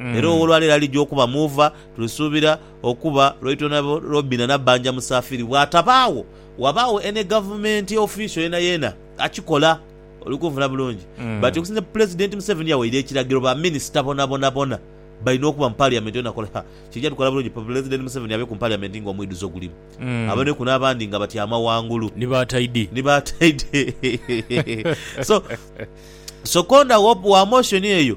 Era ow'olwaleero alija okuba Muva, tulisuubira, okuba Lwaitwonabo Robina Nabbanja Musaafiri. Bw'atabaagho, ghabagho any gavumenti official yeenayeena akikola. Oli kunfuna bulungi? But okusinza Pulezidenti Museveni yawaire ekiragiro ba minisita bonabonabona balina okuba mu Parliament yona kola ha, kiija tukola bulungi Pulezidenti Museveni abe ku Parliament nga omwidhuzo gulimu. Aboneku n'abandi nga batyama ghangulu. Ni ba taidi. Ni ba taidi. So, so conda wa motion eyo.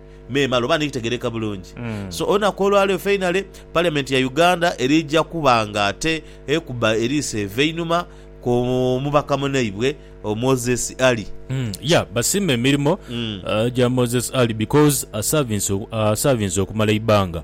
memale oba nikitegereka bulungi. So olunaku olwaleero feinale parliament ya Uganda erija kuba nga ate ekuba eriiso eva einhuma ku mubaka munaibwe Moses Ali. Yeah basiima emirimo gya Moses Ali because asavinze asavinze okumala eibbanga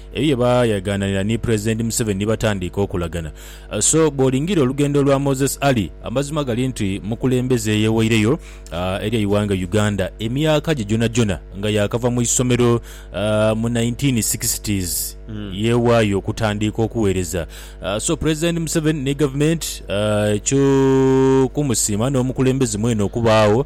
Ebyo bye baayagaananira ni Pulezidenti Museveni ni batandiika okolagana. So bw'olingiirira olugendo lwa Moses Ali, amazima gali nti mukulembeze eyeweireyo eri eighanga Uganda emyaka gye gyonagyona nga yaakava mu isomero mu nineteen sixties yeewaayo okutandiika okuweereza. So Pulezidenti Museveni ni Gavumenti kyo kumusiima n'omukulembeze mwene okubaagho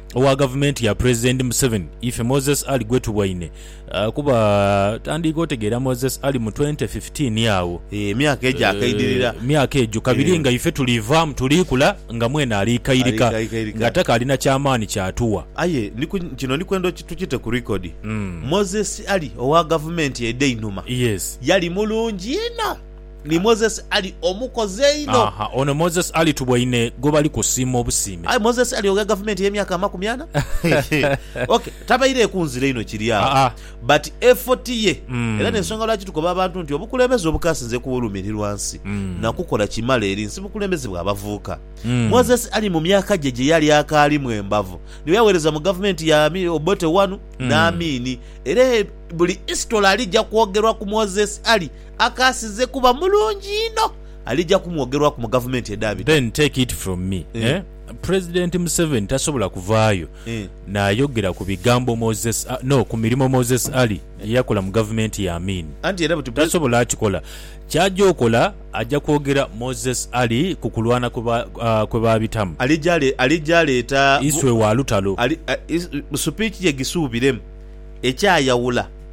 owa gavumenti ya Pulezidenti Museveni ife Moses Ali gwetubwaine kuba tandiika otegeera Moses Ali mu 2015 agho emyaka egyo akaidirira emyaka egyo kabiri nga ife tuliivaamu tuliikula nga mwene aliikairika nga takaali na kyamaani kyatuwa. Aye kino ndikwenda tukite ku record Moses Ali owa gavumenti edheinhuma yali mulungi inho. Ni Moses Ali omukozi einho. Aha, ono Moses Ali tuboine gwebali kusiima obusiime. Aye Moses Ali ogha gavumenti eyemyaka amakumi ana? Ok, tabaire ku nzira inho kiri agho, Aa. but effort ye era Mm. n'ensonga lwaki tukoba abantu nti obukulembeze obukasinze ku w'olumirirwa nsi Mm. na kukola kimala eri nsi bukulembeze bwa bavuuka. Mm. Moses Ali mu myaka gye gye yali akaalimu embavu niwe yawereza mu gavumenti ya Ami, Obote wanu, Mm. n'Amini era e, buli history alija kwogerwa ku Moses Ali, akaasize kuba mulungi inho alija kumwogerwaku mu gavumenti edhaabita. Then take it from me eh President Museveni tasobola kuvaayo naayogera ku bigambo Moses no ku mirimo Moses Ali gye yakola mu gavumenti ya Amin. Tasobola kikola. Ky'aja okola aja kwogera Moses Ali ku kulwana kwe baabitamu. Alija aleeta. Iswe wa lutalo. Supiichi ye gisuubiremu ekyayawula.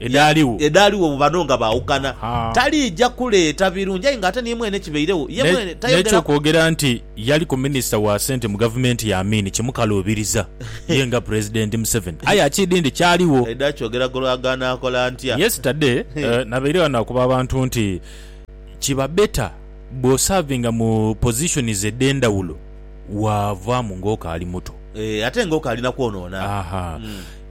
edhaligho bwe bano nga baaukana, taliija kuleeta birungi. Aye ng'ate ni mwene kibairegho, ye mwene tayogera. N'eky'okwogera nti yaliku minisita wa sente mu gavumenti ya Amin kimukaluubiriza ye nga Pulezidenti Museveni. Aye akiidhi nti kyaligho. Aidha akyogera ku lw'ago anaakola antya? Yesitade nabaire ghano akuba abantu nti kiba beta bw'osavinga mu pozishonizi edh'endhawulo. waavaamu ng'okaali muto. Ee, ate ng'okaali na kwonoona. Ahaa.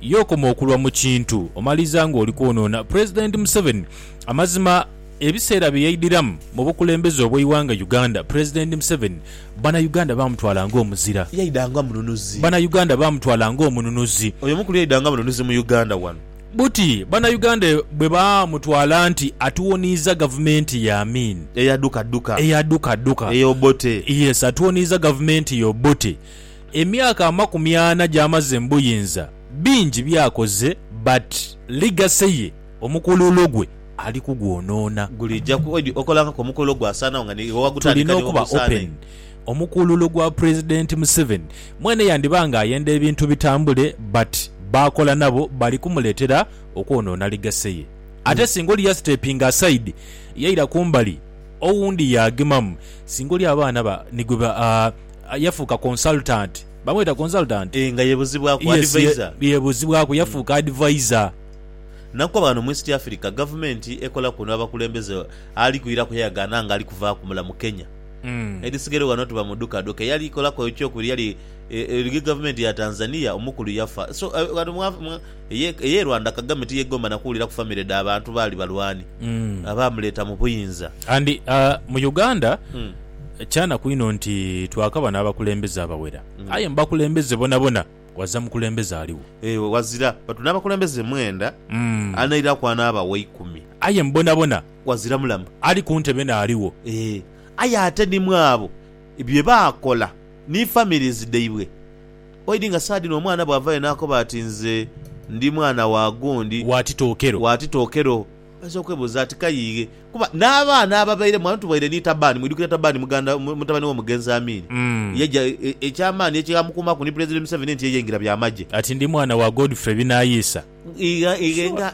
Ye okoma okulwa mu kintu, omaliriza ng'oli kwonoona. Pulezidenti Museveni. Amazima, ebiseera bye yaidhiramu mu bukulembeze obw'eighanga Uganda, Pulezidenti Museveni Banauganda baamutwala ng'omuzira. Yaidha nga mununuzi. Banauganda baamutwala ng'omununuzi. Oyo mukulu yaidha nga mununuzi mu Uganda wano. Buti Bannayuganda bwe baamutwala nti atuwoniiza gavumenti ya Amin. Eya duka duka. Eya duka duka. Eya Obote. Yes, atuwoniiza gavumenti ya Obote. Emyaka amakumi ana gy'amaze mu buyinza, bingi by'akoze but legacy ye, omukululo gwe ali kugwonoona. Guliija ku edi okola akakomukulo gwasaanagho nga n'iwe wagutandika n'iwe gw'osaana inho. Tulina okuba open. Omukuululu gwa president Museveni mwene yandiba nga ayenda ebintu bitambule but baakola nabo bali kumuletera okwonoona legacy ye ate singa oli yasitepinga aside yaira kumbali owundi yaagemamu singa oli abaana ba nigwe ba aah yafuuka consultant bamweta consultant? Eeh nga yebuzibwaku, yes ye advisor. yebuzibwaku yafuuka advisor. Nakoba ghano mu East Africa gavumenti ekola kuno abakulembeze ali kwiraku yayagaana nga ali kuvaaku mulamu Kenya. Mm. Edhisigere ghano tuba mu duka duka eyali kolaku ekyokubiri yali Ege gavumenti ya Tanzania omukulu yafa so ghano mwa mwa eye Rwanda Kagame tiyegomba na kuwulira ku family dha bantu baali balwani Mm. abaamuleta mu buyinza. And uh, mu Uganda Mm. kyanaku inho nti twakaba n'abakulembeze abawera Mm. aye mu bakulembeze bonabona waza mukulembeze aligho Eh, ghazira but n'abakulembeze mwenda Mm. anairaku anaaba wa ikumi. aye mu bonabona. ghazira mulamu. Ali ku ntebe n'aligho. Ee, aye ate ni mw'abo bye baakola ni families dhaibwe. Oidhi nga saha dhino omwana bw'avaayo n'akoba ati, Nze ndi mwana wa gundi. Wa Titookero. Wa Titookero. Oinza okwebuuza ati, Kayiighe, kuba n'abaana ababairemu ghano tubaire ni Taban. Mwidhukira Taban muganda, mutabane w'omugenzi Amin? Yaja, eky'amaani ekyamukuumaku ni Pulezidenti Museveni nti ye yaingira by'amagye. Ati, Ndi mwana wa Godfrey Binaayiisa. Ighe, ighe nga.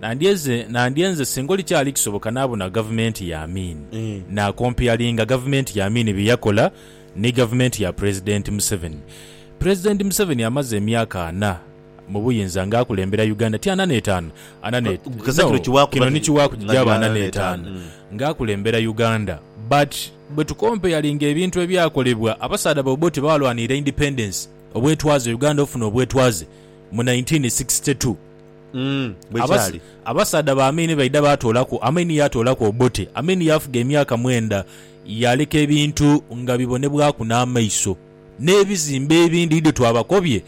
Nandyeze, nandyenze singa olikyali kisoboka nabona gavumenti ya Amin, nakompeyalinga gavumenti ya Amin bye yakola ni gavumenti ya Pulezidenti Museveni. Pulezidenti Museveni amaze emyaka ana mu buyinza nga akulembera Uganda, ti ana n'etaanu, ana ne, no, kino ni kiwaku gigyaba ana n'etaanu, nga akulembera Uganda. But bwe tukompeyalinga ebintu ebyakolebwa, abasaadha ba Obote baalwanirira independence, obwetwaze, Uganda ofuna obwetwaze mu nineteen sixty two. Mm, bwe Abas- kyali. abasaadha ba Amini baidha baatoolaku Amini yaatoolaku Obote. Amini yaafuga emyaka mwenda. Yaaleka ebintu nga bibonebwaku n'amaiso. N'ebizimbe ebindi idho twabakobye,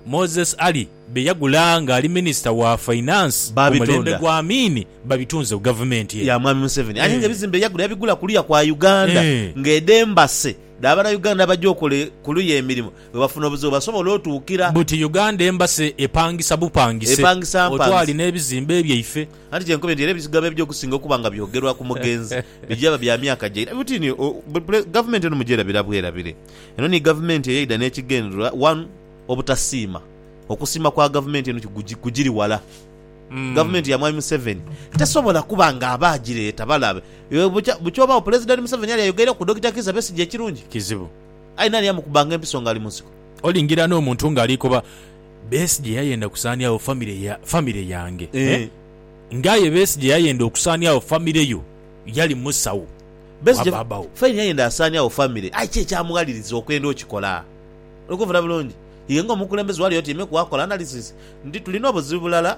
Moses Ali bye yagula ng'ali minisita wa Finance ku Baabitunda. mulembe gwa Amini, babitunze ku gavumenti eno. ya mwami Museveni aye nga Eh. ebizimbe yagula yabigula kuluya kwa Uganda Eh. nga edho embase dha bana Uganda abaja okola e- kuluya emirimo Bwebafuna obuzibu basobola otuukira. Buti Uganda Embassy epangisa bupangise Epangisa otwali mpangisa. n'ebizimbe byaife. Anti kyenkobye nti era ebizigo ebyo okusinga okuba nga byogerwa ku mugenzi bigyaba bya myaka gyaira. Buti ni Gavumenti eno mugyerabira bwerabire. Eno ni Gavumenti eyaidha n'ekigendererwa one obutasiima. Okusiima kwa Gavumenti eno kugiri wala. Gavumenti ya Mwami Museveni tesobola kuba nga aba agireeta balabe. Bukya bukya obagho Pulezidenti Museveni ali ayogeire ku Dokita Kizza Besigye ekirungi? Kizibu. Aye naani amukubanga empiso ng'ali mu nsiko? Olingira n'omuntu ng'ali koba, Besigye yayenda kusaaniagho famire ya, famire yange. Eeh. Nga aye Besigye yayenda okusaaniagho famire yo, yali musawo wa Besigye baaba wo. faine yayenda asaaniagho famire, aye ki ekyamughaliriza okwenda okikola? Oli kunfuna bulungi? Iwe ng'omukulembeze wali otyaime ku akola analysis nti tulina obuzibu bulala.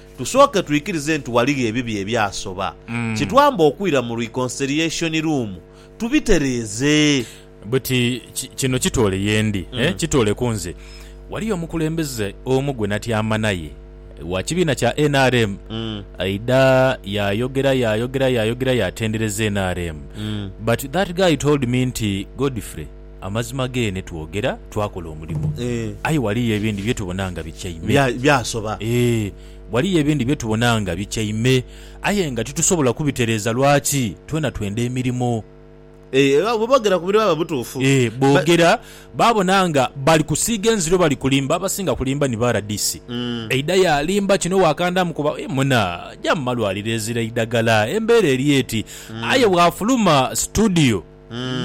Tusooke twikirize nti ghaligho ebibi ebyasoba, kitwambe okwira mu Reconciliation Room tubitereeze. Buti ki, kino kitoole ye ndi, eh, kitoole ku nze. Waliyo omukulembeze omu gwe natyama naye, wa kibiina kya nrm, aidha yaayogera, yaayogera, yaayogera, yaatendereza nrm. But that guy told me nti, Godfrey, Amazima geene twogera, twakola omulimo. Aye ghaliyo ebindi bye tubona nga bityaime. Byasoba. Ee, ghaliyo ebindi bye tubona nga bityaime, aye nga titusobola kubitereeza. Lwaki? Twena twenda emirimo. Ee, era bwe boogera ku biri baba butuufu. Ee, boogera, baabona nga bali kusiiga enziro, bali kulimba. Abasinga kulimba ni ba RDC. Eidha yaalimba kino waakandaamu kuba, Ee muna, ja mu malwaliro ezira eidhagala, embeera eri eti. Aye bw'afuluma situdiyo.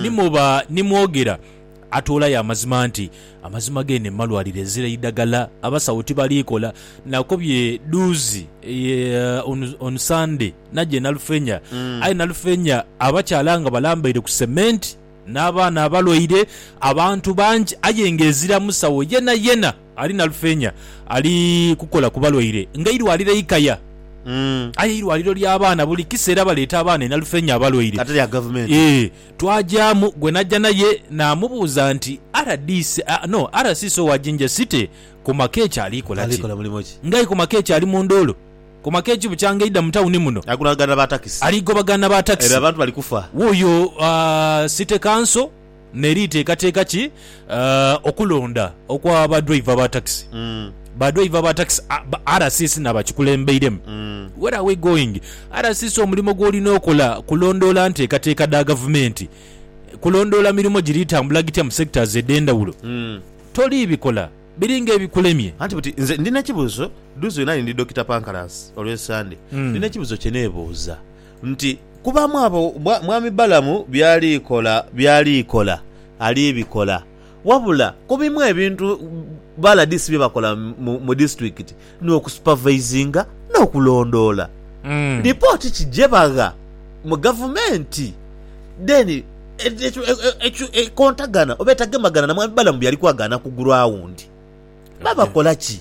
Ni muba ni mwogera atoolayo amazima nti, Amazima geene mu malwaliro ezira eidagala abasawo tibali kola. Nakobye dhuuzi eye on on Sande naja e Nalufenya aye Nalufenya abakyala nga balambaire ku cement n'abaana abalwaire abantu bangi aye nga ezira musawo yenayena. Ali na lufeenya ali kukola ku balwaire nga eirwaliro eikaya. Aye eirwaliro lya baana buli kiseera baleeta abaana e Nalufeenya abalwaire. Ee, twagyamu gwe najja naye naamubuuza nti, RDC, no, RCC owa Jinja City Komakech ali kola ki? Ng'aye Komakech ali mu nduulu. Komakech bukyanga eidha mu tawuni muno ali gobagana na ba takisi. Wuuyo City Council. N'eriteekateeka ki okulonda okwa badwaiva ba takisi? Badwaiva ba takisi ba RCC n'abakikulembeiremu, Where are we going? RCC omulimo gw'olina okola kulondoola nteekateeka dha gavumenti, kulondoola mirimo giri tambula gitya mu sectors edh'endhawulo. Toliibikola, biri ng'ebikulemye. Anti buti nze ndi n'ekibuuzo, dduuzi wenali ndi Dokita Pancras olw'e Ssande, ndi n'ekibuuzo kye neebuuza. nti, Kubaamu abo mwami Balamu by'ali kola, by'ali kola ali bikola. Wabula ku bimu ebintu ba LDC bye bakola mu disitulikiti ni okusupavaizinga n'okulondoola lipooti ki gye bagha mu gavumenti then ekontagana oba etagemagana na mwami Balamu by'ali kwagaana ku guraawundi. Babakola ki?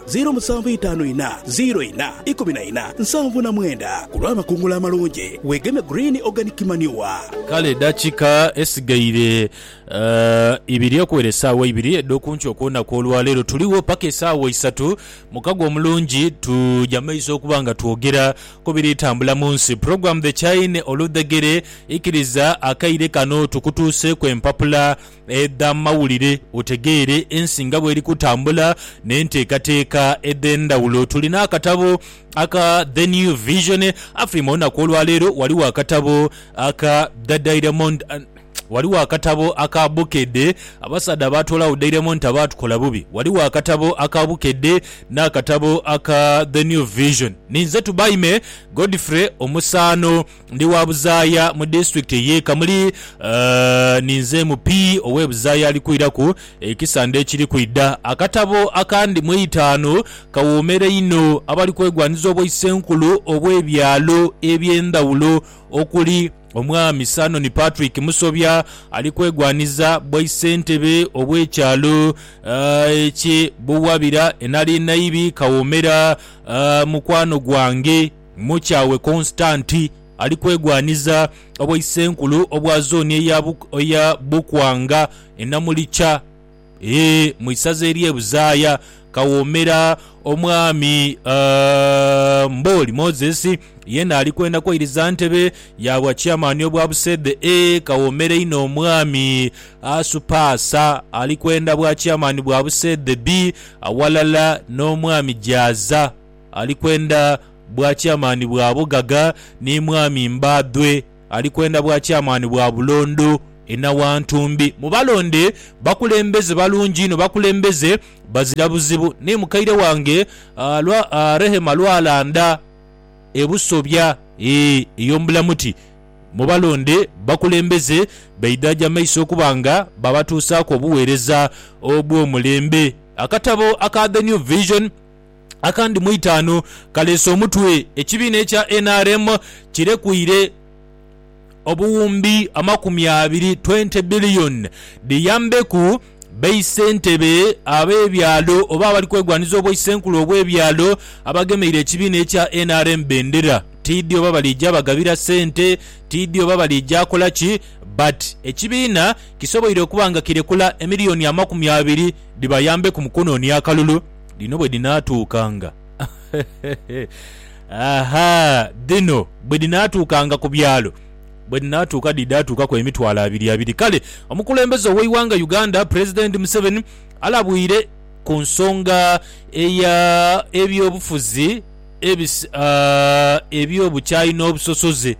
Ziiro musanvu itaanu inha, ziiro inha, ikumi na inha, nsanvu na mwenda ku lw'amakungula amalungi. Weegeme Green Organic Manure. Kale edakika esigaire ibiri okuwera esaawa ibiri edhokunkyo okwonaku olwaleero tuligho paka esaawa isatu mukago omulungi tuja maiso okuba nga twogera kubiri tambula munsi program The Chine Oludhegere ikiriza akaire kano tukutuuseeku empapula edh'amawulire otegeere ensi nga bw'eri kutambula n'enteekateeka edh'endhawulo. Tulina akatabo aka The New Vision Afrima. Olunaku olwaleero ghaligho akatabo aka The Diamond Ghaligho akatabo aka Bukedde, Abasaadha abaatoolagho Diamond abaatukola bubi. Ghaligho akatabo aka Bukedde n'akatabo aka The New Vision. Ninze Tubaime Godfrey Omusaano. Ndi wa Buzaaya mu disitulikiti ey'e Kamuli. Ninze MP ow'e Buzaaya ali kwiraku ekisande ekiri kwidha. Akatabo akandi mu eitaanu kawoomera inho abali kwegwanhiza obwaisenkulu obw'ebyalo eby'endhawulo okuli, Omwami Sanon Patrick Musobya ali kwegwanhiza bwaisentebe obw'ekyalo eky'e Buwabira e Nalinaibi, Kawomera, mukwano gwange. Mukyawe Konsitanti ali kwegwaniza obwaisenkulu obwa zooni eya eya Bukwanga e Namulikya ee mu isaza ery'e Buzaaya kawoomera Omwami Mbooli Moses yeena ali kwenda kwairiza ntebe ya bwa Chairman obwa Buseedhe e kawoomera inho Omwami Asupaasa ali kwenda bwa Chairman bwa Buseedhe bii aghalala n'Omwami Jaaza Ali kwenda bwakyamaani bwa bughaga, ni mwami mbadhwe, ali kwenda bwakyamaani bwa bulondo e Nawantumbi. Mubalonde bakulembeze balungi inho, bakulembeze bazira buzibu. Ni mukaire wange lwa Rehema Lwalanda e Busobya ee ey'omu Bulamuti. Mubalonde bakulembeze baidhaje amaiso okuba nga babatuusaaku obuweereza obw'omulembe. Akatabo aka The New Vision. akandi mu itaanu kaleese omutwe. Ekibiina ekya nrm kirekuire obuwumbi amakumi abiri, 20 billion, dhiyambeku baisentebe ab'ebyalo oba abali kwegwaniza obwaisenkulu obw'ebyalo abagemeire ekibiina ekya nrm bendera. Tiidhi oba baliija bagabira sente, tiidhi oba baliija kola ki but ekibiina kisoboire okuba nga kirekula emiliyoni amakumi abiri dhibayambeku mu kunoonia akalulu. Dhino bwe dhinaatuukanga, aha, dhino bwe dhinaatuukanga ku byalo, bwe dhinaatuuka dhiidhatuukaku emitwalo abiri abiri. Kale omukulembeze ow'eighanga Uganda Pulezidenti Museveni alabwire ku nsonga eya eby'obufuzi ebis aah eby'obukyayi n'obusosoze.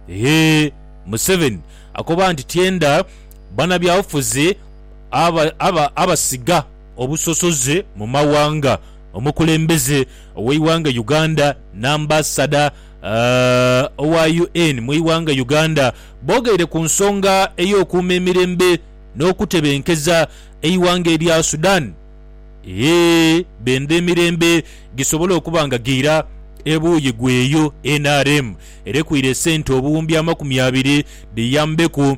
Eeh Museveni akoba nti tyenda banabyabufuzi aba aba abasiga. obusosoze mu mawanga, omukulembeze oweighanga Uganda n'ambasada owa UN mu ighanga Uganda boogeire ku nsonga ey'okuuma emirembe n'okutebenkeza eighanga erya Sudan e benda emirembe gisobole okuba nga giira ebuuyi gweyo nrm erekwire esente obuwumbi amakumi abiri dhiyambeku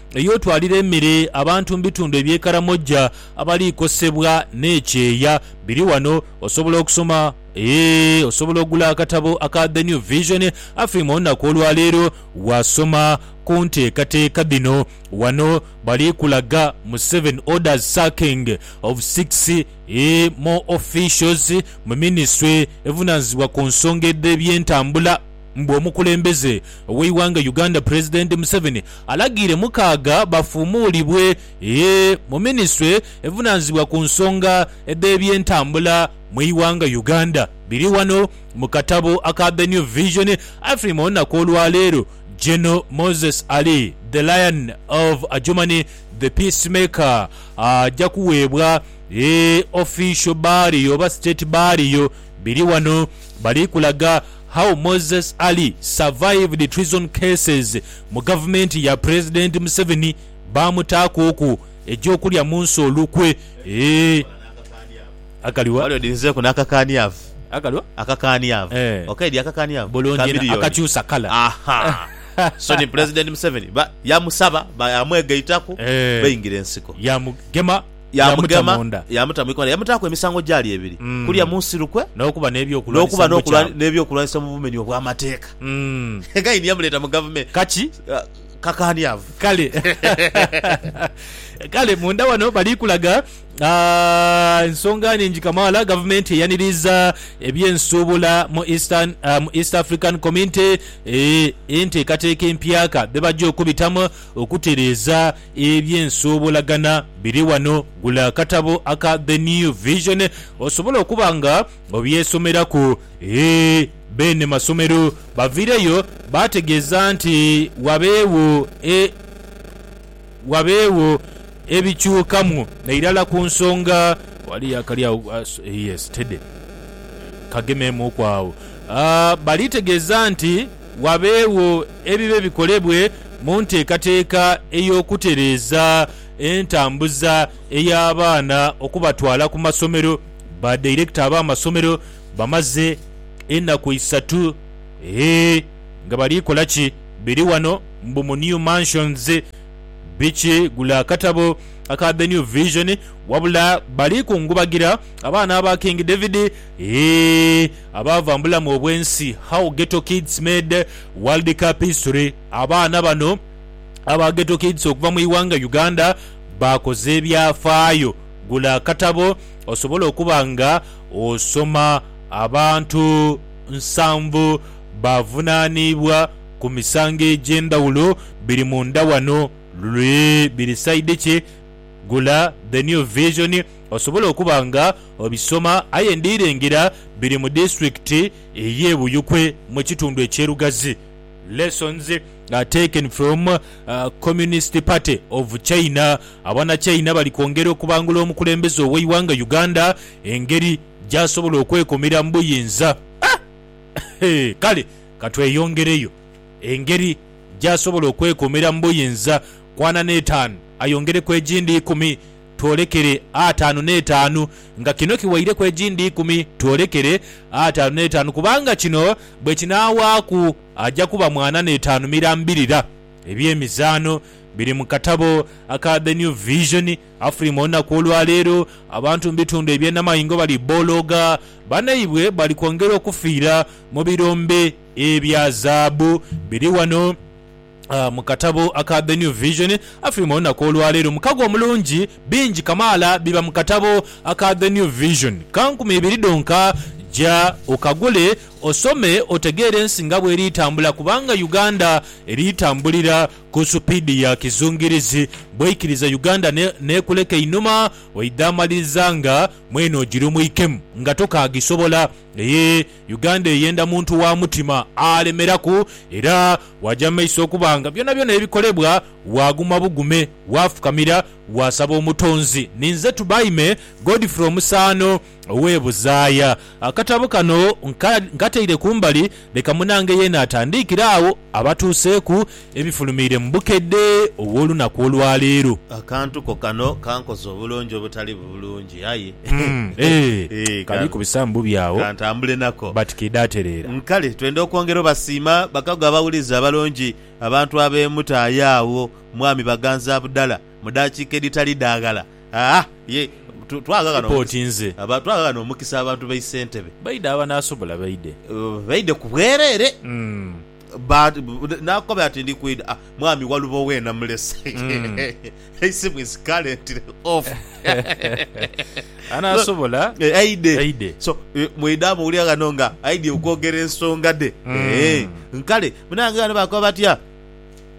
ey'otwalira emere abantu mu bitundu eby'e Karamoja abaliikosebwa n'ekyeya biri wano osobola okusoma eeh osobola okugula akatabo aka The New Vision Afrima olunaku olwaleero wasoma ku nteekateeka dhino wano bali kulaga mu seven orders sacking of six eeh more officials mu minisitule evunaanyizibwa ku nsonga edh'ebyentambula. Mbu omukulembeze oweighanga Uganda Pulezidenti Museveni alagiire mukaaga bafuumuulibwe eeh mu minisitule evunanizibwa ku nsonga edhebyentambula mweighanga Uganda. Biri wano mu katabo aka The New Vision afirima olunaku olwaleero Gen Moses Ali The Lion of Adjumani The Peace Maker aja kuweebwa eeh official burial oba state burial biri wano bali kulaga How Moses Ali survived treason cases mu gavumenti ya Pulezidenti Museveni baamutaaku oku egy'okulya mu nsi olukwe eeh akali wa? Wali odinzeeku n'akakaaniavu. Akali wa? Akakaaniavu. Eeh. Okaidhi akakaaniavu? Bulungi inho, Chameleon. akakyusa kala. Ahaa. So ni Pulezidenti Museveni ba, yamusaba, ba, yamwegaitaku, Eeh. baingira ensiko. Yamugema. yaamuta mu nda. Yaamuta mu ikomera, yamutaaku emisango gyali ebiri, kulya mu nsi lukwe, n'okuba n'okuba n'eby'okulwanisa mu bumenyi obw'amateeka. Kaini yamuleeta mu gavumenti. Kakaaniavu. Kale. Kale munda wano bali kulaga ensonga nhingi kamaala. Gavumenti eyaniriiza eby'ensuubula mu East African Community enteekateeka empyaka dhe baja okubitamu okutereeza. Eby'ensoobolagana biri wano. Gula akatabo aka The New Vision osobole okuba nga obyesomeraku. E beene masomero baviireyo baategeeza nti wabeegho e wabeegho ebikyukamu nairala ku nsonga. Ghaliyo akali agho yes, Teddy. Kagemeemuuku agho. Balitegeeza nti. Wabeegho ebibe bikolebwe mu nteekateeka ey'okutereeza entambuza ey'abaana okubatwala ku masomero. Ba dairekita ab'amasomero bamaze enaku isatu eeh nga bali kola ki? Biri wano mbu mu New Mansions biki? Gula akatabo aka The New Vision wabula bali kungubagira abaana aba King David eeh. Abaava mu bulamu obw'ensi How Ghetto Kids Made World Cup History Abaana bano aba Ghetto Kids okuva mu ighanga Uganda baakoze ebyafaayo Gula akatabo osobole okuba nga osoma Abantu nsanvu bavunaaniibwa ku misango egy'endhawulo Biri munda wano Luli biri sayidi ki? Gula The New Vision. Osobole okuba nga obisoma aye ndi lengera biri mu disiturikiti ey'e Buyukwe mu kitundu eky'e Lugazi. Lessons are taken from Communist Party of China, Abanachina bali kwongera okubangula omukulembeze ow'eighanga Uganda engeri gy'asobola okwekumira mu buyinza. Kale katweyongereyo engeri gy'asobola okwekumira mu buyinza. Kwana n'etaanu ayongereku egindi ikumi. twolekere ataanu n'etaanu, nga kino kiwaireku egindi ikumi, twolekere ataanu n'etaanu, kubanga kino bwe kinaawaaku aja kuba mwana n'etaanu mirambirira. Eby'emizaano biri mu katabo aka The New Vision. Afrima olunaku olwa leero, abantu mu bitundu eby'e Namaingo bali bolooga banaibwe bali kwongera okufiira mu birombe ebya zaabu. Biri wano. Mu katabo aka The New Vision afirima olunaku olwaleero mukago omulungi. Bingi kamaala biba mu katabo aka The New Vision. Ka nkumi ibiri dhonka. Ja okagule osome otegeere ensi nga bweri tambula kubanga Uganda eri tambulira ku supiidi ya kizungirizi. Bwoikiriza Uganda n'ekuleka einhuma oidha amaliriza nga mwene ogirumwikemu nga tokaagisobola. Yee! Uganda eyenda muntu wa mutima alemeraku era waja mumaiso okuba nga byonabyona ebikolebwa waguma bugume, wafukamira, wasaba Omutonzi. Ninze Tubaime Godfrey Omusaano ow'e Buzaaya. Akatabo kano nkataire kumbali leka munange yeena atandiikire agho. Abatuuseeku ebifulumiire mu bukedde obw'olunaku olwa leero. Akantu ko kano kankoze obulungi obutali bulungi aye Eeh kali kubisaamu bubi agho kantambule nako. But ke daatereera. Kale twenda okwongera obasiima bakago abawulizi abalungi, abantu abeemutaayo agho Mwami Baganza Abudallah mu daakiika edhitali dha ghala. Tupotinze. Twaagha ghano omukisa abantu b'e Ssentebe. Baidhe abanaasobola baidhe. Baidhe ku bwereere. Naakoba ati, Ndi kwidha. Mwami Walubo weena mulese. Eisimu is currently off. Anaasobola aidhe. So, mwidha muwulira ghano nga aidhie okwogera ensonga dhe. Kale, bannange ghano baakoba batya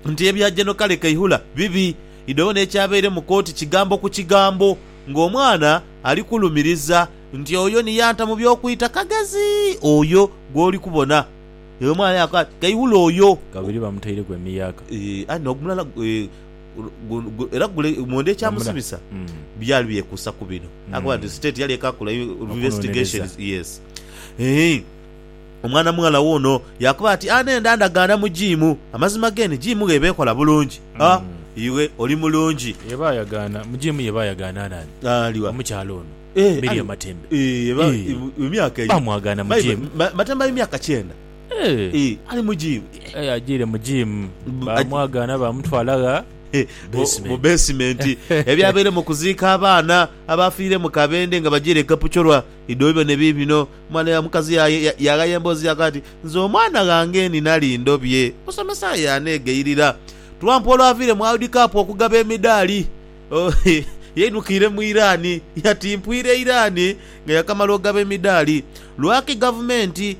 nti ebya Gen. Kale Kaihura bibi. Idho n'ekyabaire mu kooti kigambo ku kigambo ng'omwana ali kulumiriza nti oyo ni yanta mu by'okwita Kagezi oyo gw'oli kubona. Eyo omwana yaakoba ati, Kaihura oyo. Kabiri bamutaireku emiyaaka. Eeh, aye n'ogumulala gu, era gule mwenda ekyamusibisa byali byekuusa ku bino. Yaakoba nti, State yali ekaakula investigations, yes, eeh. Omwana mughala wuuno. Yaakoba ati, A n'enda ndagaana mu jiimu. Amazima ghe ni jiimu gh'eba ekola bulungi. A Iwe oli mulungi. Eba yagaana mu jiimu ye eba yagaana naani? Ali wa? Omukyala ono. E, Mary ali wa? Matembe. E, eba Ee. e, mu myaka eyo. Baamwagaana mu Mayi- jiimu. ma- Matembe ali myaka kyenda. Ee. E, ali mu jiimu. Aye ajiire mu jiimu. Bu- Baamwagaana baamutwala gha? E, mu- Basement. mu beesimenti. Ebyabaire mu kuziika abaana abaafiire mu Kabende nga bajiire e Kapchorwa, idho byo ne biibino. Omwana ya mukazi yaye yaghaya emboozi yaku ati, Nze omwana ghange ni nali ndobye. Omusomesa aye yaneegayirira. Trump olwaviire mu World Cup okugaba emidaali, yaidhukiire mu Iran. Yatimpwira Iran nga yakamala ogaba emidaali. Lwaki gavumenti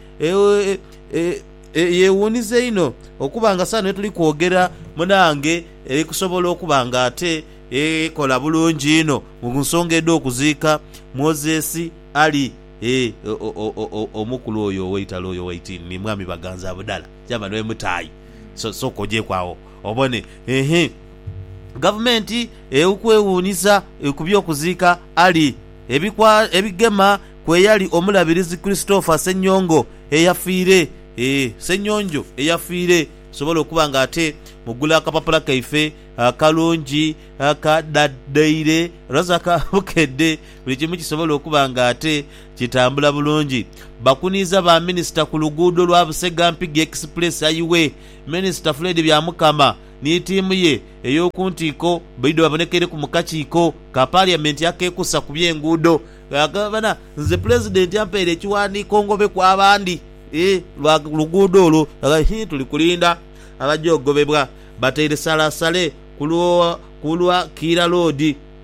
eyewuuniza einho okuba nga saano yetuli kwogera munange eri kusobola okuba nga ate ekola bulungi inho mu nsonga edh'okuziika Moses Ali? Ee, o, o, o, o, omukulu oyo ow'eitalo oyo waiti ni Mwami Baganza budhala. Chairman we Mutaayi. So, sooka ojeeku agho obone. Ehe. Gavumenti eu kwewuunyisa ku by'okuziika Ali. Ebikwa, ebigema ku eyali Omulabirizi Christopher Ssenyongo eyafiire. Ee, Ssenyonjo eyafiire. Tusobole okuba nga ate mugula akapapula kaife akalungi aka Da, Daily, Razaka Bukedde. buli kimu kisobole okuba nga ate kitambula bulungi. Bakuniiza ba Minisita ku luguudo lwa Busega Mpigi Express ayiwe Minisita Fred Byamukama ni tiimu ye ey'okuntiiko baidho babonekeireku mu kakiiko ka Parliament akekusa ku by'enguudo. Gabana nze Pulezidenti ampaire ekiwandiiko ngobe ku abandi lwa luguudo olwo hhii tuli kulinda abagya ogobebwa. Bataire salasale ku lwa Kiira Loodi.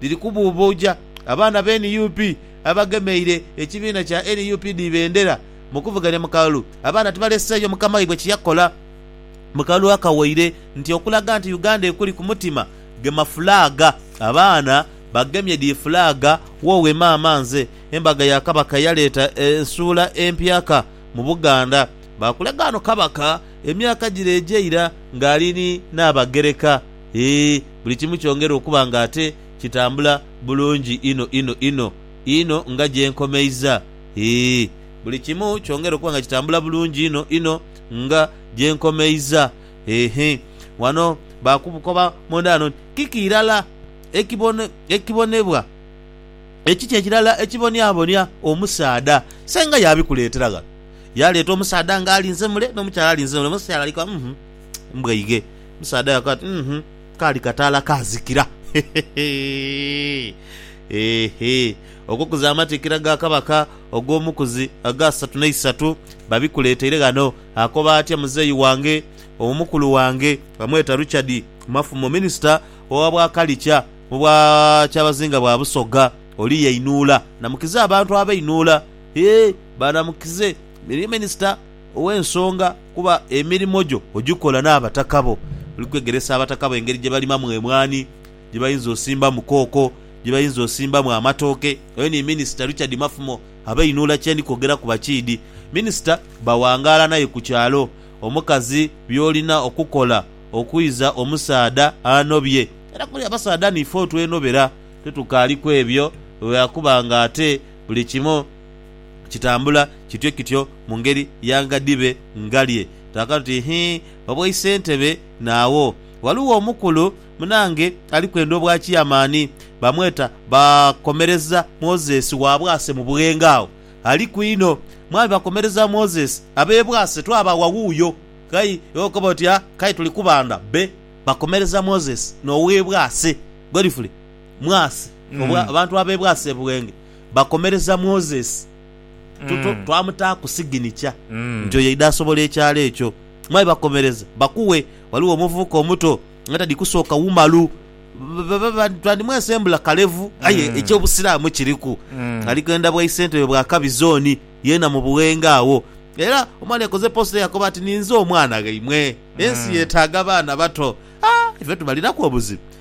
dhiri kubuubuuja abaana be nup abagemeire ekibiina kya nup dhi bendera mu kuvuganya mu kalulu abaana tibaleseeyo mukama waibwe kye yakola mu kalulu akawaire nti okulaga nti Uganda ekuli ku mutima gema fulaaga abaana bagemye dhi fulaaga Woowe maama nze Embaga ya Kabaka eyaleeta ensuula empyaka mu Buganda baakulaga ghano Kabaka emyaka gire egyeira ng'ali ni Nnaabagereka eeh buli kimu kyongera okuba nga ate kitambula bulungi inho inho inho inho nga gye nkomeiza. Hee, buli kimu kyongera okuba nga kitambula bulungi inho inho nga gye nkomeiza. Hehe. Ghano baakubukoba munda ghano nti, Kiki irala ekibone, ekibonebwa, ekiki ekirala ekiboniabonia omusaadha? Senga yaabikuleetera ghano. Yaaleeta omusaadha nga alinze mule, n'omukyala alinze mule. Omukyala ali ku, Uhmm. Mbwaighe. Omusaadha yakoba ati, Uhmm, kaali kataala kaazikira. Hehe. Okukuza amatikkira ga Kabaka ogw'Omukuzi ag'asatu n'eisatu babikuleeteire ghano. Akoba atya muzeeyi wange? Omukulu wange bamweta Richard Mafumo, minisita owa Bwakalikya mu bwa Kyabazinga bwa Busoga. Oli yainhuula namukize abantu abeinhuula. Hee, baanamukize. Minisita. ow'ensonga kuba emirimo gyo ogikola n'abataka bo. Oli kwegeresa abataka bo engeri gye balimamu emwaani, gye bayinza osimbamu kooko, gye bayinza osimbamu amatooke. Oyo ni Minisita Richard Mafumo abeinhula kye ndi kwogera ku bakiidhi. Minisita bawangaala n'aye ku kyalo. Omukazi by'olina okukola okwiza omusaadha anobye. Era buli abasaadha niife otwenobera, titukaali kw'ebyo lwa kuba ng'ate buli kimu. kitambula kityo kityo mu ngeri ya nga dhibe ngalye. Twakatu tuti, Hii, obwaisentebe naagho. Ghaligho omukulu munange ali kwenda obwa kiyamani, bamweta Bakomereza Moses wa Bwase mu Bughenge agho. Aliku inho. Mwami Bakomereza Moses, ab'e Bwase twabaagha wuuyo. Kai iwe okoba oti, Ah, kale tuli kubandha be Bakomereza Moses n'ow'e Bwase. Godfrey Mwase, obwa, abantu ab'e Bwase e Bughenge. bakomereza Moses tuto Mm. twamutaaku siginikya Mm. nti oyo yaidha asobola ekyalo ekyo. Mwami bakomereza bakuwe ghaligho omuvubuka omuto nga tadhi kusooka wumalu ba- ba- ba- twandimwesembula kalevu aye Mm. eky'obusiraamu kiriku. Mm. Ali kwenda bwa isentebe bwa Kabi Zooni yeena mu Buwenge agho. Era omwana ekoze post yakoba ati ninze omwana ghaimwe. Ensi Mm. yetaaga baana bato. Haa ife tubalinaku obuzibu.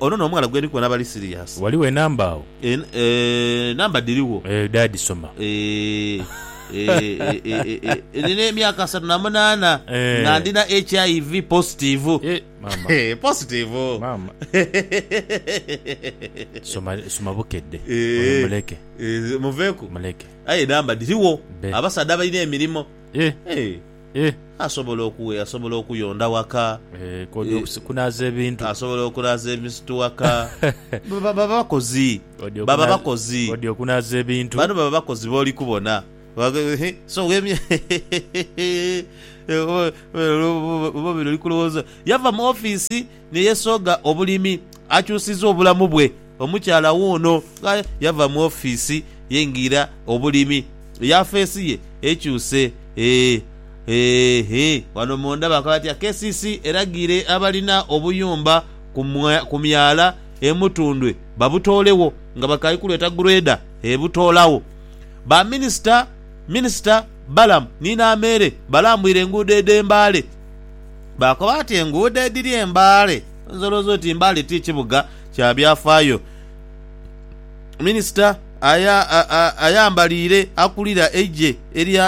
Ono n'omughala gwendi kubona bali serious. Ghaligho enamba agho? Eeh number dhirigho. Eeh dad soma. Eeh Nina emyaka asatu na munaana nga ndina HIV positivu. Eeh positivu. Soma bukedde oyo muleke. Muveeku aye enamba dhirigho abasaadha abalina emirimo. Eh. Asobola oku, asobola okuyonda waka. Eh, kod, Eh. okus, kunaaza ebintu. Asobola okunaaza ebintu waka. Ba, ba, baba bakozi. Kod, Baba okunaaza, bakozi. kod, okunaaza ebintu. Bano baba bakozi b'oli kubona. Ba, ba, he, so wemye, hehehehe, oba, oba, oba oba bino oli kulowooza. Yava mu office. ni yesogha obulimi, akyusiza obulamu bwe. Omukyala wuuno nga yava mu ofiisi yengira obulimi. Yafeesi ye ekyuse. Eeh, eeh, wano munda bakola batya? KCC eragiire abalina obuyumba ku myala e Mutundwe babutoolegho nga bakali kulweta grader ebutoolagho. Ba minisita, Minisita Balaam ni Nameere balambwire enguudo edh'e Mbale. Baakoba bati enguudo edhiri e Mbale. Oyinza olowooza oti Mbale ti kibuga kya byafaayo. Minisita ayambaliire akulira eigye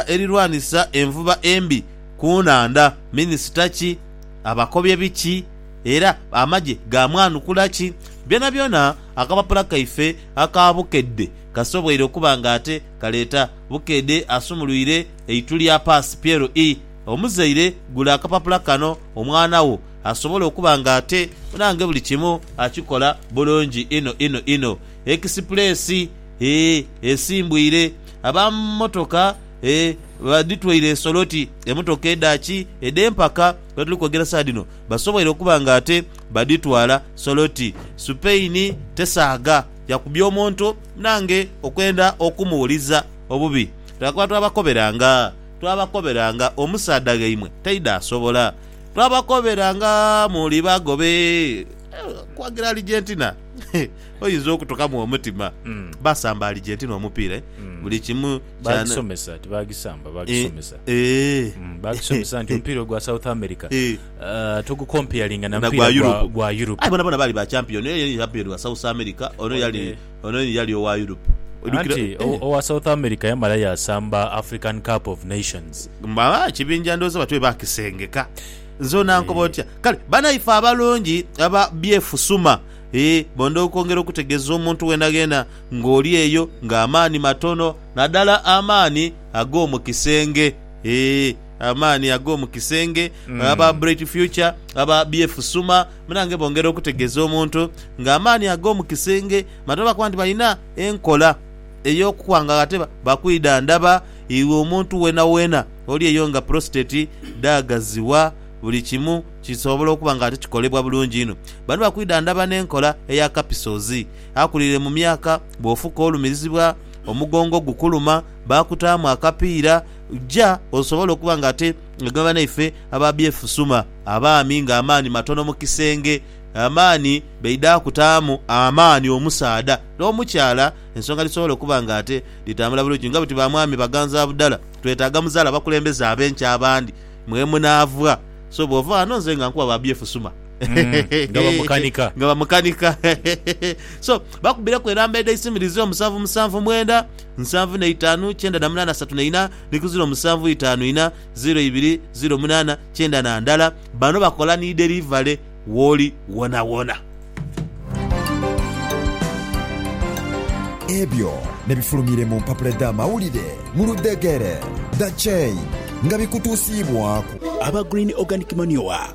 erirwanisa envuba embi ku nhandha, minisita ki? Abakobye biki? Era amagye gaamwanukula ki? Byonabyona akapapula kaife aka Bukedde kasoboire okuba ng'ate kaleeta Bukedde asumulwire eitulya paasi PLE. Omuzaire, gula akapapula kano omwana wo asobole okuba nga ate nange buli kimu akikola bulungi inho inho inho. Ekisipuleesi, Ee, esimbwire. Aba mmotoka, ee, badhitwaire nsolo oti emmotoka edha ki, edh'empaka lwe tuli kwogera saagha dhino, basoboire okuba nga ate badhitwala nsolo oti. Supaini tesaagha yakubya omuntu nange okwenda okumuwuliza obubi, leka kuba twabakoberanga. Twabakobera nga omusaadha ghaimwe taidhaasobola. Twabakobera nga muli bagobe. Okuwagira Argentina oyinza okutukamu omutima. Baasamba Argentina omupiira eh? Buli kimu kya. Baagisomesa, tibaagisamba, baagisomesa. Eh, eh. Baagisomesa nti omupiira ogwa South America Eh. ah, togukompeyaringa na Na mupiira gwa gwa- Europe. gwa Europe. Aye bonabona baali ba champion. Oyo yali champion wa South America, ono yali Ono ye yali owa Europe. Anti owa South America yamala yaasamba African Cup of Nations. Mama kibinja ndhooza batyo bwe baakisengeka. Nze onankoba otya? Kale banaife abalungi aba Byefusuma, ee bondha okwongera okutegeeza omuntu gheenagheena ng'oli eyo ng'amaani matono, nadala amaani ag'omu kisenge, ee amaani ag'omu kisenge, aba Bright Future, aba Byefusuma, Munange bongera okutegeeza omuntu nga amaani ag'omu kisenge mata oba kuba nti balina enkola ey'okukwangagha te bakwidha ndaba iwe omuntu weenaweena oli eyo nga prostate dhaagaziwa buli kimu kisobola okuba nga ate kikolebwa bulungi inho bano bakwidha ndaba n'enkola eya kapisozi akulire mu myaka bw'ofuka olumirizibwa omugongo gukuluma baakutaamu akapiira ja osobole okuba nga ate nga ghe banaife ababyefusuma, abaami nga amaani matono mu kisenge, amaani baidha kutaamu amaani omusaadha n'omukyala ensonga dhisobole okuba nga ate dhitambula bulungi. Nga bwetuli ba mwami baganzabudala, twetaaga muzaale abakulembeze ab'enkya abandi mwe munaava. So bw'ova ghano nze nga nkuwa babyefusuma. Nga bamukanika. Nga bamukanika. So bakubireku enamba edh'eisimu dhizira omusanvu musanvu mwenda. nsanvu na itaanu kyenda na munaana satu na ina ni ku ziro musanvu itaanu ina ziro ibiri ziro munaana kyenda na ndala. Bano bakola ni derivale woli wonawona. Ebyo nebifulumire mu mpapula edh'amawulire mu ludhegere, The Chain, nga bikutuusiibwaaku. Aba Green Organic Manure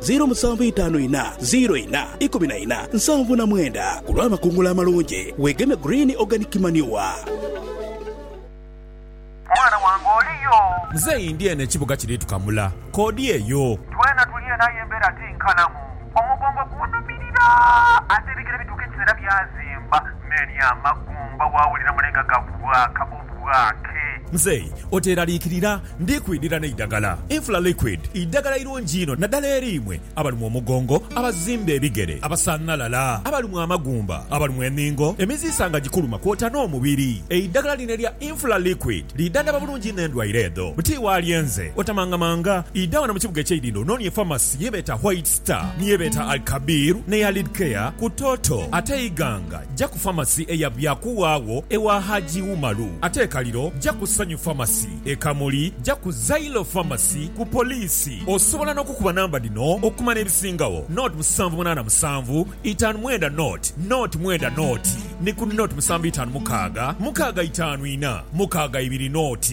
Ziro musanvu itaanu inha, ziro inha, ikumi na inha, nsanvu na mwenda. Ku lw'amakungula amalungi, weegeme Green Organic Manure. Mwana wange oli yo? Muzeeyi ndi eno ekibuga kiri tukamula. K'odi eyo. Twena tuli eno aye embeera ti nkalamu. Omugongo gunhumirira ate ebigere bituuka ekiseera byazimba. Many amagumba waawulira mulenga gakubwa akabumba. bwake. Mzei, oteeraliikirira, ndi kwidhira n'eidagala. Infla Liquid, eidagala eirungi inho nadala eri imwe abalumwa omugongo, abazimba ebigere, abasanhalala, abalumwa amagumba, abalumwa enhingo, emiziisa nga gikuluma kwota n'omubiri. Eidagala lino erya Infla Liquid lidhandhaba bulungi inho endwaire edho. Buti walye nze, otamangamanga, idha ghano mu kibuga eky'eidhindho onoonie famasi ye beeta Whites. Sita ni ye beeta Al Kabir n'eya Lid Care ku Toto ate Iganga ja ku Pharmacy eya Byakuwa agho ewa Hajji Umaru ate e Kaliro ja ku Sanyu Pharmacy. E Kamuli ja ku Zailo Pharmacy ku Poliisi. Osobola n'okukuba namba dhino okumanya ebisingagho, nought musanvu munaana musanvu itaanu mwenda nought nought mwenda nought ni ku nought musanvu itaanu mukaaga mukaaga itaanu ina mukaaga ibiri nought.